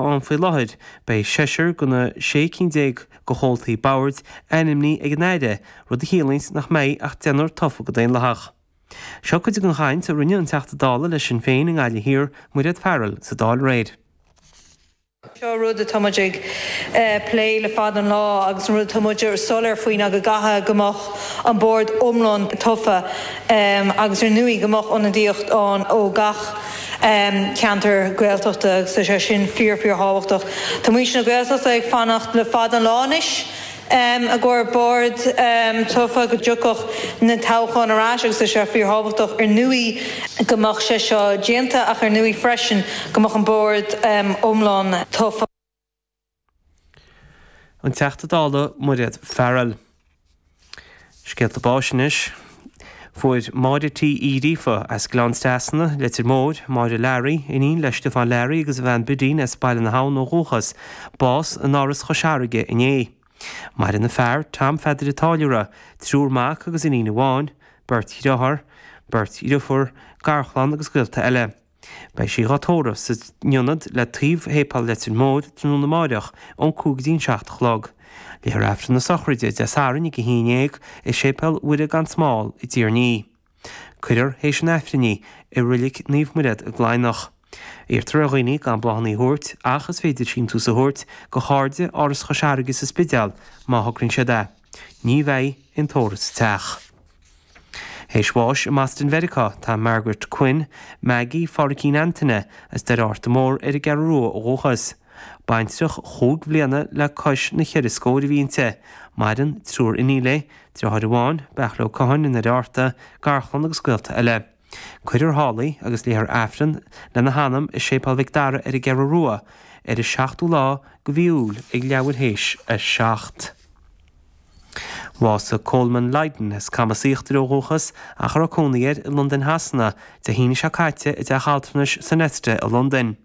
ann faoi láthair, beidh seisear de na sé cinn déag de chomhaltaí boird ainmnithe ag an Aire, rud a chiallaíonns nach mbeidh ach deichniúr tofa go daonlathach. Seo cuid den chaint a rinne an Teachta Dála le Sinn Féin i nGaillimh Thiar, Mairéad Farrell, sa Dáil aréir. Seo rud atá muid ag plé le fada an lá agus an rud atá muid soiléir faoi ná go gcaithfeadh go mbeadh an bord iomlán tofa agus ar ndóigh go mbeadh ionadaíocht ann ó gach ceantar Gaeltachta agus tá sé sin fíor-fíorthábhachtach. Tá muintir na Gaeltachta ag fanacht le fada an lá anois i gcomhair bord tofa go dtiocfadh na toghcháin ar ais agus tá sé fíorthábhachtach, ar ndóigh, go mbeadh sé seo déanta ach ar ndóigh freisin go mbeadh an bord iomlán tofa. An Teachta Dála Mairéad Farrell. Scéalta Báis Anois Fuair Máire T. Uí Ghríofa as Gleann Trasna, Leitir Móir, Máire Larry, iníon le Stiofán Larry agus a bhean Bidín as Baile na hAbhann ó dhúchas, bás in Áras Chois Fharraige inné. Maireann a fear, Tom Pheadair an Táilliúra, triúr mac agus iníon amháin, beirt dhriotháir, beirt dhriofúr, garchlann agus gaolta eile. Beidh sí dhá tórramh san ionad le taobh Shéipéal Leitir Móir tráthnóna amáireach ón cúig go dtí an seacht a chlog. Léifear Aifreann na Sochraide, Dé Sathairn ag a haon dhéag i Séipéal Mhuire Gan Smál i dTír an Fhia. Cuirfear théis an Aifrinn í i Reilig Naomh Mairéad i gCladhnach. Iarrtar ar dhaoine gan bláthanna a thabhairt ach is féidir síntiús a thabhairt do Chairde Áras Chois Fharraige sa Spidéal má thograíonn siad é. Ní bheidh aon tórramh sa teach. Théis bháis i mBoston, Mheiriceá, tá Margaret Quinn, Maggie, Pháraicín Antaine, as Doire Fhearta Mór, ar an gCeathrú Rua ó dhúchas. Baintreach chúig bhliana le cois na cheithre scóir a bhí inti, maireann triúr iníon léi, deartháir amháin, Beartla Ó Catháin i nDoire Fhearta, garchlann agus gaolta eile. Cuirfear thall í agus léifear Aifreann lena hanam i Séipéal Mhic Dara ar an gCeathrú Rua ar an 7ú lá de mhí Iúil ag leathuair théis a seacht. Bhásaigh Coleman Lydon, as Camas Íochtair ó dhúchas ach a raibh cónaí air i Londain Shasana, Dé hAoine seo caite i dteach altranais Sonesta i Londain.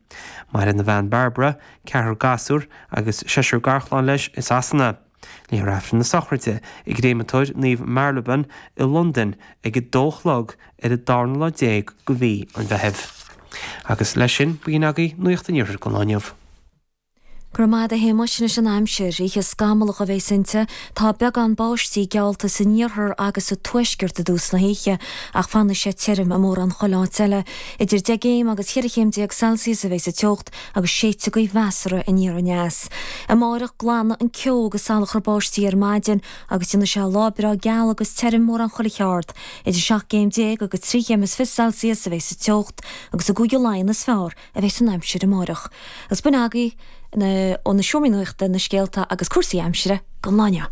Maireann a bhean Barbara, ceathrar gasúr agus seisear garchlann leis i Sasana. Léifear Aifreann na sochraide i gcréamatóir Naomh Marylebone i Londain ag a dó a chlog ar an darna lá déag de mhí an Mheithimh. Agus leis sin, b'in agaibh Nuaíocht an Iarthair don lá inniu. Go raibh maith agat a Shéamuis. Anois an aimsir, oíche scamallach a bheas inti, tá beagán báistí geallta san iarthar agus sa tuaisceart i dtús na hoíche ach fanfaidh sé tirim i mórán chuile áit eile. Idir deich gcéim agus cheithre chéim déag Celsius a bheas an Art agus séidfidh gaoth mheasartha aniar aneas. Amáireach glanfaidh an ceo agus salachar báistí ar maidin agus déanfaidh sé lá breá geal agus tirim mórán chuile cheard. Idir seacht gcéim déag agus trí chéim is fiche Celsius a bheidh sa teocht agus i gCúige Laighean is fearr a bheidh san aimsir amáireach. Agus b'in agaibh ó na seomraí nuachta na scéalta agus cúrsaí aimsire go n-uile.